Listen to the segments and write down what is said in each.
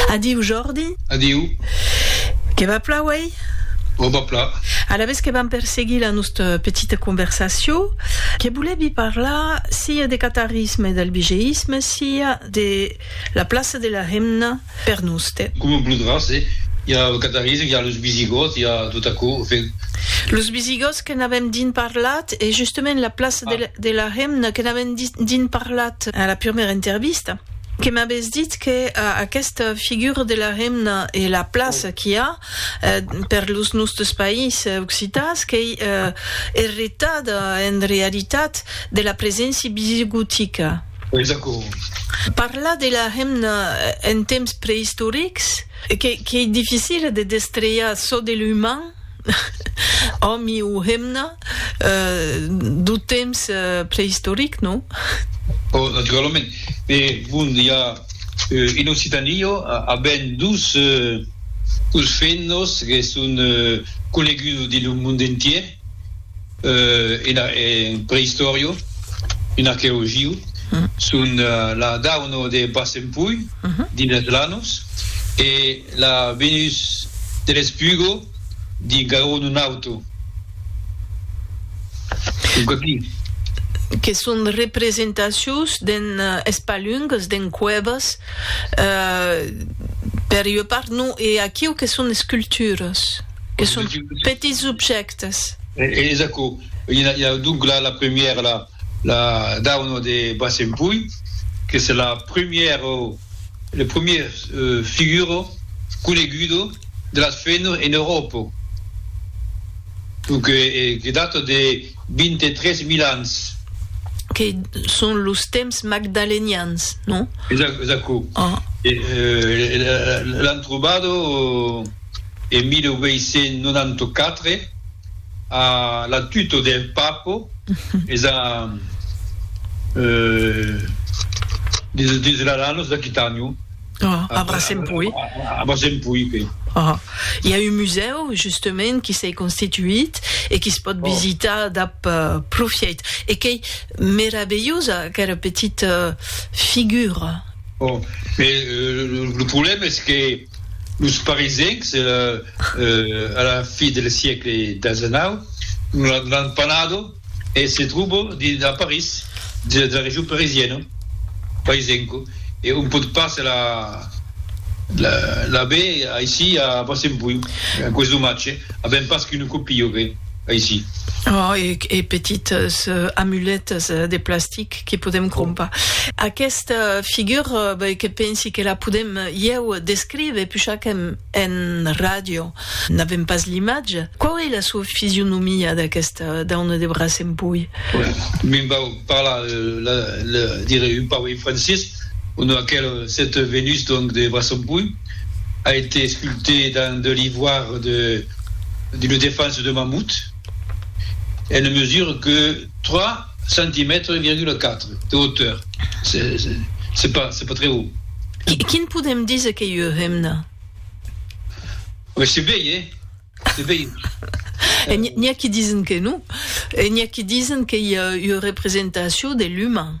Adiu, Jordi. Adiu. Que va pla uèi? O va pla. Alavetz que vam perseguir la nosta petita conversacion, que volevi parlar sia de catarisme e d'albigeïsme, sia de la plaça de la hemna per noste. Coma voludràs, eh? I a lo catarisme, i a los visigòts, i a tot aquò, enfin. Los visigòts que n'avèm dins parlat, e justament la plaça de la hemna que n'avèm dins parlat a la prumèra intervista. Que m'avètz dit que aquesta figura de la remna e la plaça qu'i a per los nòstes país occitans qu'ei erretada en realitat de la preséncia visigotica. Ei d'acòrd. Parlar de la remna en temps preistorics qu'ei dificil de destriar çò de l'uman. Òmi o hemna, d'o temps preistoric, non? Ò, naturalament. E bon, i a en Occitània aben dus fennos que son conegudos dins lo mond entièr en preistòria, en arqueologia. Son la dauna de Bassempui, dins las Lanos, e. La Venus de l'Espugo di Garon Nun Auto. Que son representacions d'en espalungues, d'en cuèvas, per ua part, non, e aquiu que son esculturas, que son petits objèctes. Es aquò, donc la premièra, la. la dauna de Bassenpui, que se la primièro, le primièr figuro conegudo de las fenor en Euròpo, lo que que data de 23 mil ans. Que son los temps magdalenians, non? Exac, exaco. Ah. E l'an trobado en 1894. A la tuto de Papo es a desralanos d'Aquitànio. A Brasen pui. A Brasen pui, que. I a un musèu, justament, qui s'ei constituit e qui se pòt visitar dab profièit. E qu'ei meravelhosa, aquera petita figura. Ò, e lo problèma es que. Los Parisencs, a la fi del siècle xix, l'an panado e se tròbo a París, dins la region parisiena, Parisenco, e on pòt pas l'aver aicí a Bassenbui, aquò es domatge, avèm pas qu'una còpia, aicí. Oh, e petites amuletas de plastic. que podem crompar. Aquesta figura, ben, que pensi que la podem ieu descriver, puixa qu'en en ràdio n'avem pas l'imatge. Quau ei la sua fisionomia d'aquesta dauna de braç en pui? Me'n vau parlar, la, la, dire un pauc en francés. On a aquel, cette Vénus, donc, de braç en pui a été sculptée dans de l'ivoire de, d'une défense de mammouth. Elle ne mesure que trois centimètres e virgula quatre de hauteur. C'est pas, c'est pas très haut. Quin podem díser qu'ei ua hemna? C'est bèi, eh? C'est bèi. N'i a qui disen que non. E n'i a qui disen qu'ei ua representacion de l'uman.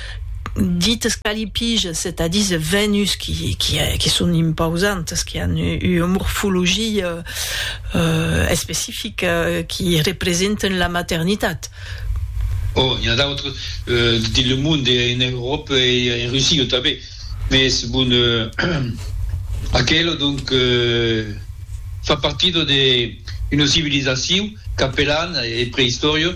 Dit escalipige, setadís es Venus qui son impausantes, qui an ua morfologia especifica, qui representen la maternitat. Ò, n'i a d'autres dins le monde, en Euròpa e en Russia tanben, mès bon, aquela donc fa partida d'una civilizacion qu'apelan, en preïstòria,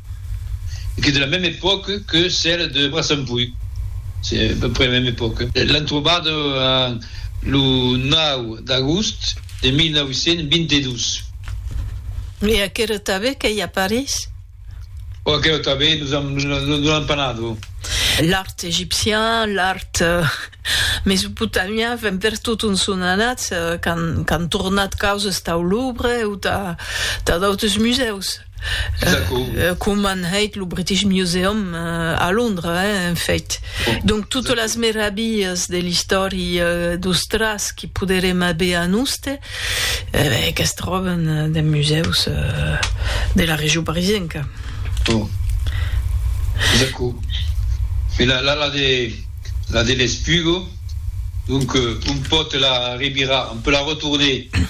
e qu'es de la meme epòca que cèla de Braçampuy, se a peu près la meme epòca. L'an trobada lo 9 d'agost de 1922. E aquera tanben qu'ei a París? Ò, aquera tanben nos an, non l'an pas nado. L'art egipcian, l'art mesopotamian, enfin per tot on son anats, qu'an tornat causas tau Louvre o tà d'autres musèus. com an hèit lo British Museum a Londres, en fèit. Donc, totes las meravilhas de l'istòria d'Austràs que poderem aver a noste, que's tròben dens musèus de la region parisenca. Bon. Es aquò. E la la de la de l'Esplugo, donc, un pòt la revirar, on peut la retourner